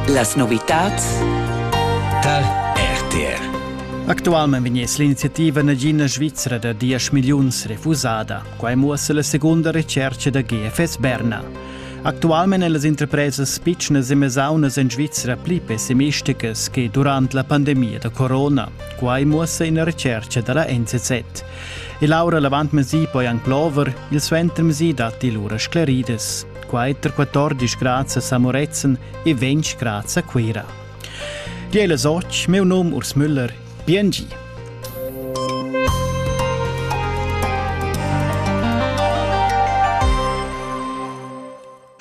Las novitads Tal RTR Actualment vegnes l'iniziativa nagina svizra da 10 milliuns refusada. Quai muossa la segunda recerca da GFS Berna. Actualment èn las interpresas pitschnas e mesaunas en Svizra pli pessimisticas che durant la pandemia da corona. Quai muossa ina recerca da la NZZ. E Laura Lavant-Mesi poi anc plover, il suenter Mesi datti lura scleridas. quai tar 14 grads a Moretzen e 20 grads a Cuira. Die Eile Soch, meu nom Urs Müller, BNG.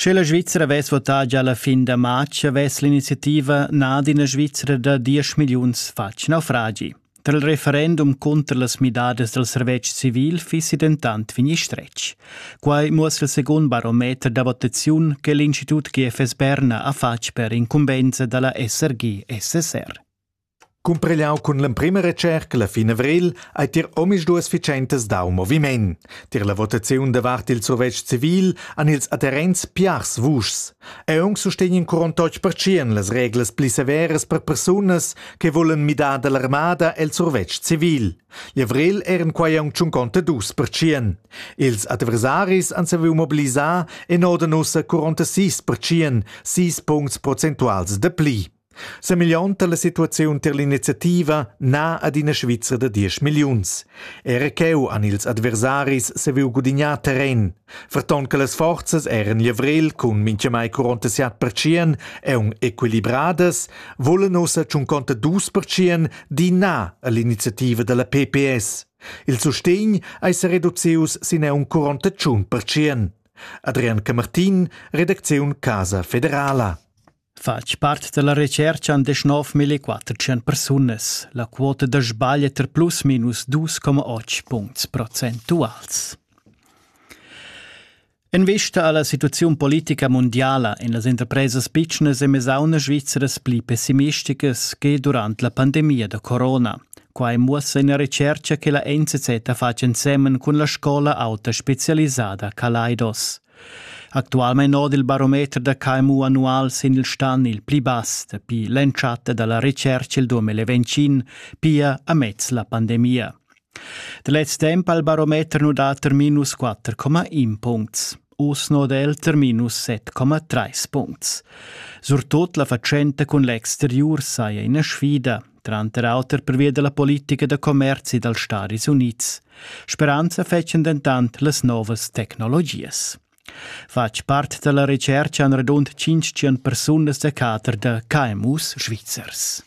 Sche la Svizzera vess votà già la fin da marz, vess l'iniziativa nà d'ina Svizzera da 10 milliuns fatg naufragi. Tra il referendum cunter las midadas dal servetsch civil fissi dentant vegnì stretg. Quai muossa il secund barometer da votaziun che l'Institut GFS Berna ha fatg per incumbensa da la SRG-SSR. Cumprigliau cun l'emprima recerca la fin avril ei tier omisduas vicentas dau moviment. Tier la votaziun davart il survetsch civil han ils adherents piars vuschs. Aunc sustegn in curontoc pertschien las reglas pli severas per persunas che vulan midar dall'armada el survetsch civil. Gli avril eran quei aunc tschunconta dus pertschien. Ils adversaris han saviu mobilisar e nodan ussa curonta sis pertschien, sis puncts prozentuals de pli. Semeglionta la situaziun tier l'iniziativa na ad ina Svizra da diesch milliuns. Era cheu han ils adversaris saviu gudignar terren. Ferton che las forzas eran levriel cun mintgamai 47 percient e equilibradas, volan ussa tschunconta dus percient di na all'iniziativa dalla PPS. Il sustegn ei se reducius sin un 41 percient. Adrian Camartin, redacziun Casa Federala. Fatg part dalla retscherca han deschnov millequattertschient persunas. La quota da sbagl è tar plus minus 2,8 puncts procentuals. En vista alla situaziun politica mundiala en las interpresas pitschnas e mesaunas svizras pli pessimisticas che durant la pandemia da corona. Quai muossa ina retscherca che la NZZ ha fatg ensemen cun la scola auta specialisada Kaleidos. Actualmein oda il barometer da KMU annual sin il stan il pli bass dapi l'entschatta dalla retscherca il 2020, pia amez la pandemia. Da lez temp ha il barometer nu dat er minus 4,1 puncts. Oz noda el ter minus 7,3 puncts. Surtut la fatschenta cun l'exteriur saja ina sfida, tranter auter pervia della politica da commerzi dals Staris Unids. Speranza fetschen dentant las novas tecnologias. Fatg part della recerca han radund 500 persunas da cater da KMUs svizzers.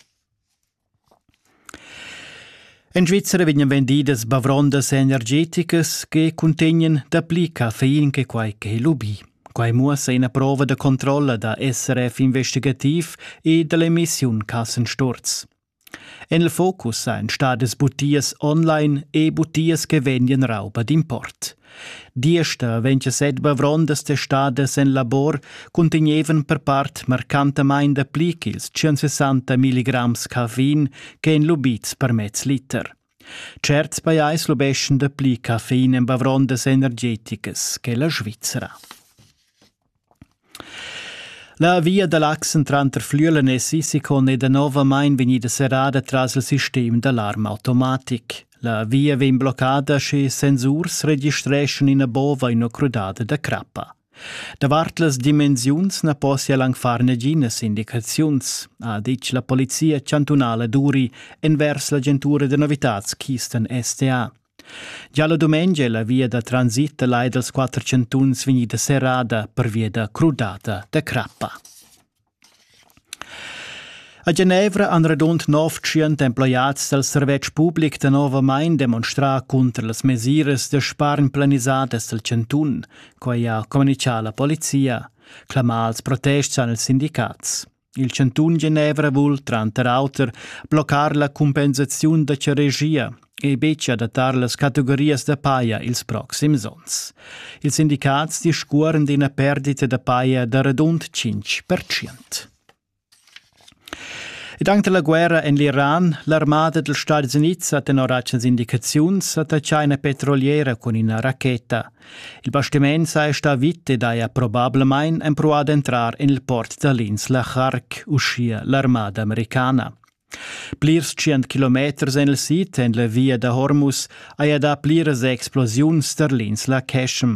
En Svizzera vegnan vendidas bavrondas energeticas che cuntegnan dapli caffein che quai che lubì. Quai muossa ina prova da controlla da SRF investigativ e da l'emissiun Kassensturz. En il focus ein stadas butias online e butias che vegnan rauba d'import. Diesta vegn set bavrondas testadas en labor cuntegnevan per part marcantamain dapli ch'ils 160 milligrams caffein ch'en lubids per mez liter. Certs pajais lubeschan dapli caffein en bavrondas energeticas che la Svizra. La via da l'Achsen tranter Flüelen e Sissikon è danovamain vegnida serrada tras il sistem d'alarmautomatic. La via vegn bloccada sche sensurs registreschan ina bova ina crudada da crappa. Davart las dimensiuns na possia anc far naginas indicaziuns, ha ditg la polizia chantunala Duri envers l'agentura da novitads Keystone STA. Gia la dumengia è la via da transit da lai dals quatter chantuns vegnida serrada pervia da crudata da crappa. A Genevra han radund nov tschient emploiads dal servetsch public danovamain demonstrà cunter las mesiras da spargn planisadas dal chantun. Quai ha communitgà la polizia. Clamà als protest han ils sindicats. Il chantun Genevra vul tranter auter bloccar la cumpensaziun da charegia. ei betg adattar las categorias da paja ils proxims onns. Ils sindicats discuoren d'ina perdita da paja da radund 5%. Ed anche la guerra en l'Iran, l'armada degli Stati Uniti ha tenor agens indicaziuns attaccà una petroliera con una racheta. Il bastimento saja sta vit ed haja probablemente provato ad entrare in il port da Linz la Chark, uschia l'armada americana. Plirs tschient kilometers en il sid en la via da Hormuz haja dà pliras explosiuns tar l'insla Qeshm.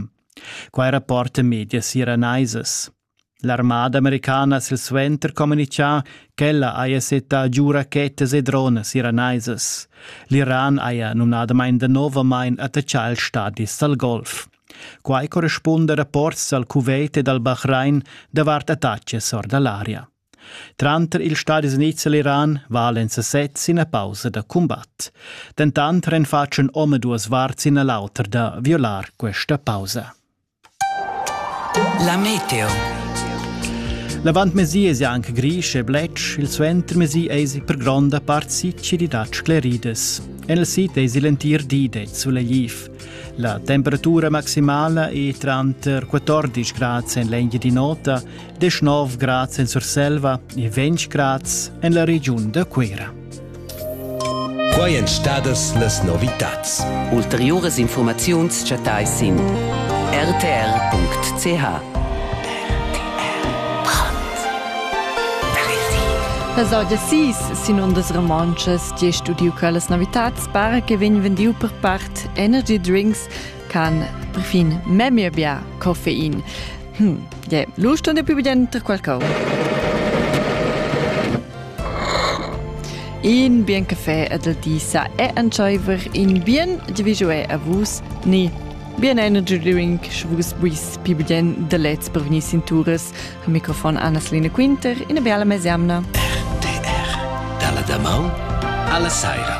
Quai rapporta medias iranaisas. L'armada americana silsuenter communitgà ch'ella haja settà giu rachettas e dronas iranaisas. L'Iran haja numnadamain danovamain attaccà ils stadis dal Golf. Quai correspunda rapports dal Kuwait e dal Bahrain davart attacks or da l'aria. Tranter ils stadis unids e l'Iran valen sesezs ina pausa da cumbat. Dentant renfatschen omaduas varts ina l'auter da violar questa pausa. La meteo. L'avantmesi es anche gris e bletsch, il suentermesi es per gronda part sicilidat sclerides. En il sit es l'entir di det sulegif. La temperatura maximala è tranter 14 grad en l'engia di nota 19 grad en Surselva e 20 grad en la regiun da Cuira. Quai èn stadas las novitads. Ulteriuras informaziuns chattai sin rtr.ch. Las auda sis sin ondas romontschas, ti studiu quellas novitads para che vegn vendiu per part energy drinks can perfin memia bia coffein. Hm, je, lusto ne più tra qualcosa. In bien caffè ad el di sa è antscheiver in bien di visué a vus ni Bien energy drink schwus buis pibien de lets per venir cinturas al microfon Anna-Selina Quinter in a biala mesiamna. RTR dalla damau alla saira.